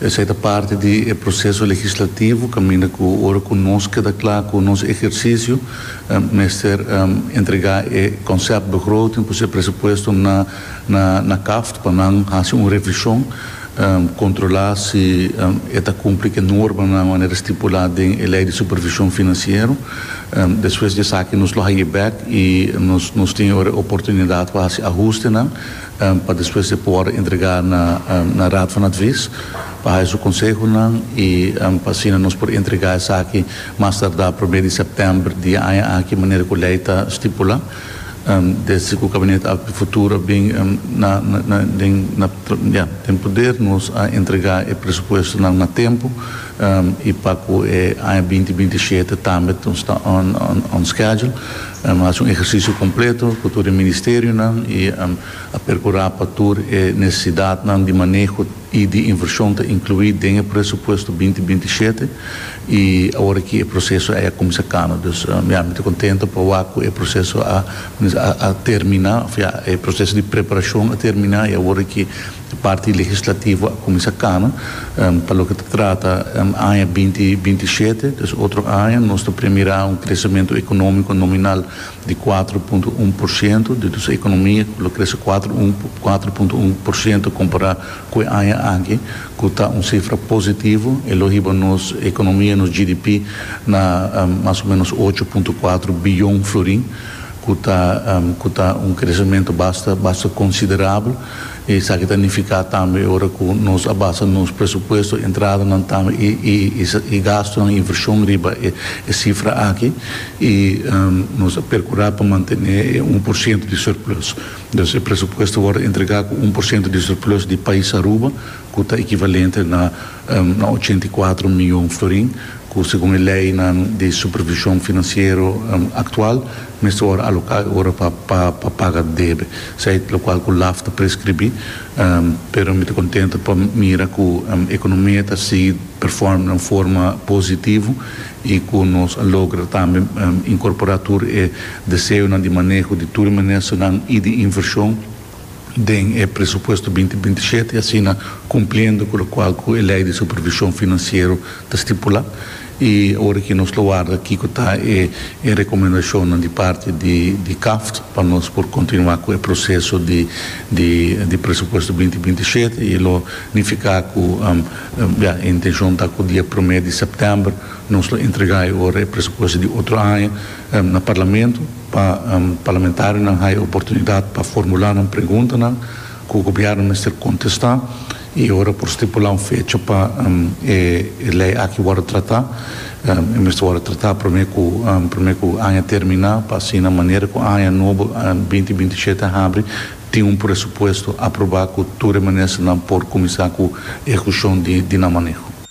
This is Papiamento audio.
Esei ta parti di e proseso legislativo kaminda ku ora ku nos keda kla ku nos ehersisio mester entregá e konsèpbegroting pues e presupuesto na na kaft pa nan hasi un revishon kontrolá si e ta kumpli ku e normanan manera stipulá den e lei di supervishon finansiero. Despues di esaki nos lo haye bèk i nos tin ora e oportunidat pa hasi ahustenan. pa despues e por entrega na na Raad van Advies pa haja su konsehonan i pa asina nos por entrega esaki mas tarda prome di sèptèmber di e aña aki manera ku lei ta stipula desde ku Kabinet Akba di Futuro a bin na na den na ya den poder nos a entrega e presupuestonan na tempu. I pa ku e aña binti binti shete tambe nos ta on on schedule. Nos hasi un ehersisio kompleto ku tur e ministerionan i a perkurá pa tur e nesesidatnan di maneho i di invershon ta inkluí den e presupuesto binti binti shete. I awor aki e proseso a kuminsá kano. Dus ya mi ta kontento pa wak ku e proseso a a terminá òf ya e proseso di preparashon a terminá i awor aki E parti legislativo a kuminsá kana pa loke ta trata aña binti binti shete. Des otro aña nos ta premirá un kresementu ekonómiko nominal di kuater punto un por siento di nos ekonomia ku lo krese kuater un kuater punto un por siento kompará ku e aña aki ku ta un sifra positivo. E lo hiba nos ekonomia, nos GDP, na mas o ménos ocho punto kuater biyon florin ku ta ku ta un kresementu basta basta konsiderabel. Esaki ta nifiká tambe ora ku nos a basa nos presupuesto, entradanan tambe i gastunan, invershon riba e sifra aki i nos a perkurá pa mantené e un por siento di surplus. Entonces e presupuesto wòrdu entregá ku un por siento di surplus di pais Aruba. ku ta ekivalente na ochenta i kuatro mion florin, ku segun e leinan di supervishon finansiero aktual mester wòrdu aloká e ora pa paga debe, sèit lokual ku laf ta preskribí. Pero mi ta kontentu pa mira ku ekonomia ta sigui performa den un forma positivo i ku nos a logra tambe inkorporá tur e deseonan di maneho di tur e ministernan i di invershon. den e presupuesto binti binti shete, asina cumpliendo cu locual cu e Ley di Supervision Financiero ta stipula. Y ora que nos lo warda kico ta e e recomendacionnan di parti di di CAFT pa nos por continua cu e proceso di di di presupuesto binti binti shete y e lo nifica cu ya e intencion ta cu dia prome di September nos lo entrega e ora e presupuesto di otro aña na Parlamento. Pa parlamentarionan haya oportunidad pa formula nan preguntanan cu Gobierno mester contesta y ora por stipula un fecha pa e ley aki wordo trata, e mester wordo trata prome cu prome cu aña termina pa asina manera cu aña nobo binti binti shete a habri tin un presupuesto aproba cu tur e ministernan por cuminsa cu ehucion di nan maneho.